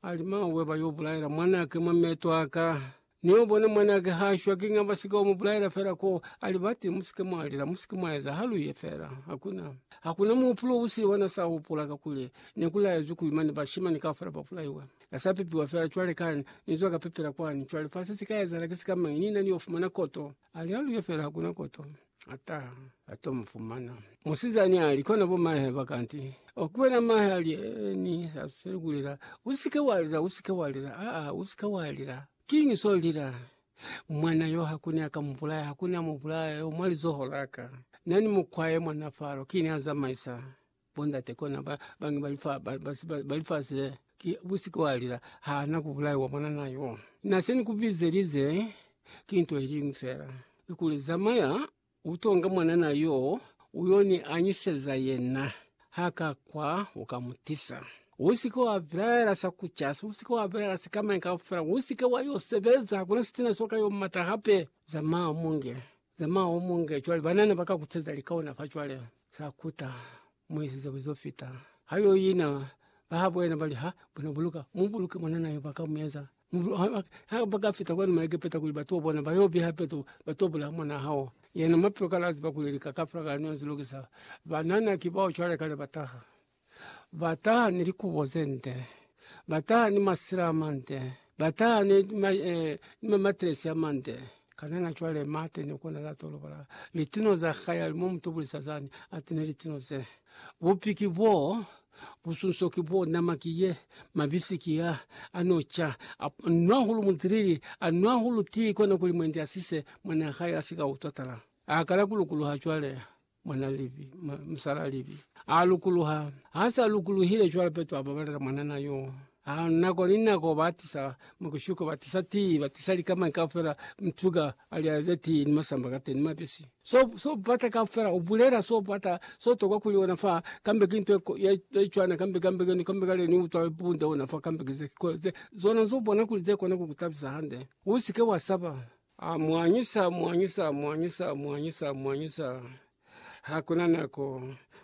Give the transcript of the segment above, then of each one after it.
ali, Mauwe ba yo bulaela mwanake mwa meto a ka. Ni yo bona mwanake ha a shwa. Kiña ba si ka mu bulaela fela ko? A li, Bati, mu si ke mwa lila, mu si ke mwa eza. Ha lu ye fela. Hakuna, hakuna muhupulo u siho na sa hupula, kakuli ne ku laezwi kuli mane bashimani kaufela ba bulaiwe. Na sa pepiwa fela cwale ka ni zwa ka pepela kwani. Cwale fa se si ka ezahala ki sikamañi, ni na ni yo fumana koto. Ali aluye fela hakuna koto ata ato mufumana. Musizani ali kona bo mahe bakanti okuwena mahe ali eni sa sele kulela usike walila usike walila a a usike walila kingi so lila mwana yo hakuni akamubulaya hakuni amubulaya yo mwali zoholaka nani mukwaye mwana faro kini aza maisa Bondate kona ba bangi bali fa ba basi ba bali fase ki busike walila hana kubulai wa mwana nayo naseni kubizelize kintu elimu fela ikuli zamaya utonga mwana nayo uyoni anyiseza yena haka kwa ukamutisa usike wa vilaela sa kuchasa usike wa vilaela sikama kaufela usike wayo sebeza kuna sitina soka yo mata hape zama munge Zamaya umunge cwale banana baka kutseza likaona fa cwale sakuta muisize kuzo fita hayo ina habo ena bali ha buna buluka mubuluke mwanana yo baka mueza ha baka fita kwenu mwa Egepeta kuli batu bona bayo biha petu bato bula mwana hao yena mapyo kalazi bakuleleka kafra kano zilokisa banana kibao cwale kale bataha Ba taha ni likubo ze nde, ba taha ni masila a mande, ba taha ni mamatresi a mande. Kana na cwale Mate ni kona za tolobala litino za hae ali mo mutubulisa zani atine litino ze? Bupi ki bo, busunso ki bo, nama ki ye, mabisi ki a, ano ca, a nwa hulu mutilili, a nwa hulu tii kona kuli mwendi asise mwana hae asika utwa tala. Akala kulukuluha cwale. Mwana Livi, ma, musala Livi, a lukuluha. Ha sa lukuluhile, cwale Petro a babalela mwanana yo. Ha nako ni nako ba tisa mukushuko, ba tisa tii, ba tisa likamañi kaufela, mtuga a lya ze tii ni masamba ka teni, mabisi. So, so bata kaufela, u bulela so bata, so tokwa kuli ona fa, kambe ki nto ye, ye cwana, kambe, kambe keni, kambe kale ni utwa bunde ona fa, kambe ki ze, ko, ze, zona zo bona kuli ze kona ku ku tabisa hande. U si ke wa saba. A mu anyisa, mu anyisa, mu anyisa, mu anyisa, mu anyisa. Ha ku na nako,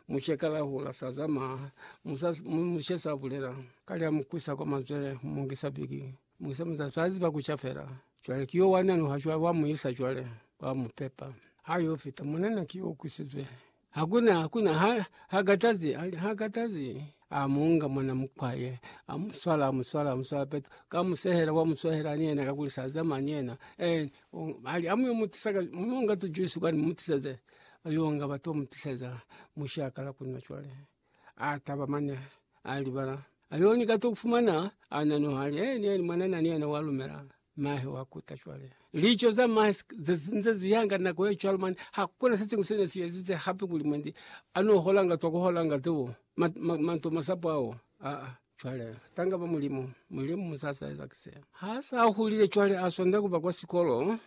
mushe ka lahula, sa zama, musa, mu- mushe sa bulela. Ka lya mu kwisa kwa mazwele, mu mu ngisa biki, mu ngisa muza, sa ziba ku ca fela. Cwale ki yo wa nanuha cwale, wa mu isa cwale, wa mu pepa. Ha yo fita, mwanana ki yo kwisizwe, Hakuna, hakuna, ha, ha katazi, ali, ha katazi. Amunga mwana mukwaye, amuswala, amuswala, amuswala petu, kamusehela, wamuswahela ni yena, kakuli sazama ni yena. Eh, o, ali, amuyo mutisaka, munga tujuisi kwani, mutisaze. Ayo nga bato mutisaza, mushakala kuna chwale. Ataba manya, alibala. Ayo ni kato kufumana, ananu hali, eh, ni yena, mwana nani yena walumela. Mahe wa kuta cwale. Lico za mahe nze ziyanga nako ye cwalo mani hakuna sesimu sene siyezize hape kuli mwendi ano holanga twa kuholanga tu ma, ma, manto masapo ao a a cwale tanga ba mulimu mulimu musasa eza kise ha sa hulile cwale asonda kuba kwa sikolo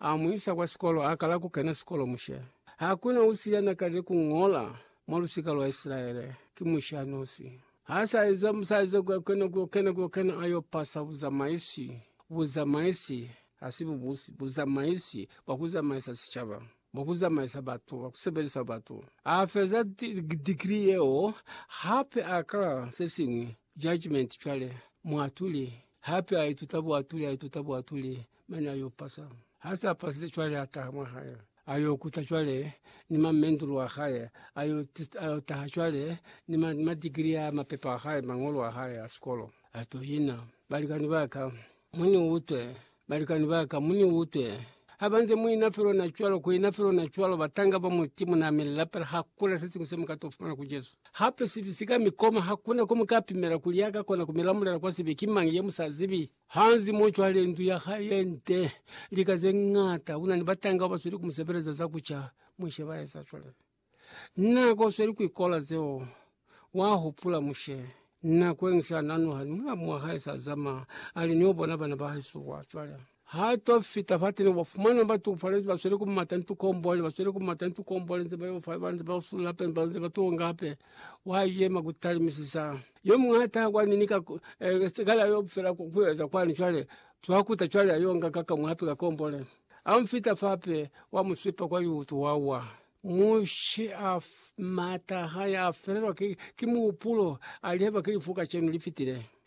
amuisa kwa sikolo akala kukena sikolo mushe hakuna usiyana kale kungola mwa lusika lwa Israele ki mushe anosi. Ha sa eza musaize kwa kena kwa kena kwa kena ayo pasa buzamaisi buzamaisi hasi bubusi buzamaisi bwa kuzamaisa sicaba bwa kuzamaisa batu bwa kusebelisa batu a feza degree yeo hape a kala se singwe judgment cwale mwatuli hape a ituta bwatuli a ituta bwatuli mane ayo pasa. Hasa apasile cwale ataha mwa hae ayo kuta cwale ni ma mendulu a hae ayo ayo taha cwale ni ma ma digiri a mapepa a hae mangolo a hae a sikolo ato ina. Balikani ba ka muni utwe balikani ba ka muni utwe habanze muina felo na cwalo kuina felo na cwalo batanga ba muti muna mi lapela hakuna se singu se muka to fumana ku Jesu. Hape sibi sika mikoma hakuna ko muka pimela kuli yaka kona ku milamulela kwa sibi ki mangi ye musa zibi. Hansi mo cwale ndu ya hae ye nde lika ze ñata, una ni batanga ba sweli ku mu sebeleza za ku ca Mushe ba eza cwale. Na ko sweli ku ikola zeo. Wa hupula Mushe, nako yeñwi se a nanuha ni mulamu wa hae sa zama, a li, Ni yo bona bana ba hesu kwa cwale. Ha to fita fateni, u ba fumana ba tukufalezi, ba sweli ku mata ni tukombole, ba sweli ku mata ni tukombole, nze ba yo fa, ba nze ba usulula hape, ba nze ba tunga hape. Wa yema ku talimisisa. Yo muñata kwani ni ka sikala yo fela ku kueza kwani cwale twa kuta cwale ayo nga ka ka mwape ka kombole amfita fape wa musipa kwa yutu wawa mushe af mata haya felelwa ki ki mupulo aleba kilifuka chenu lifitile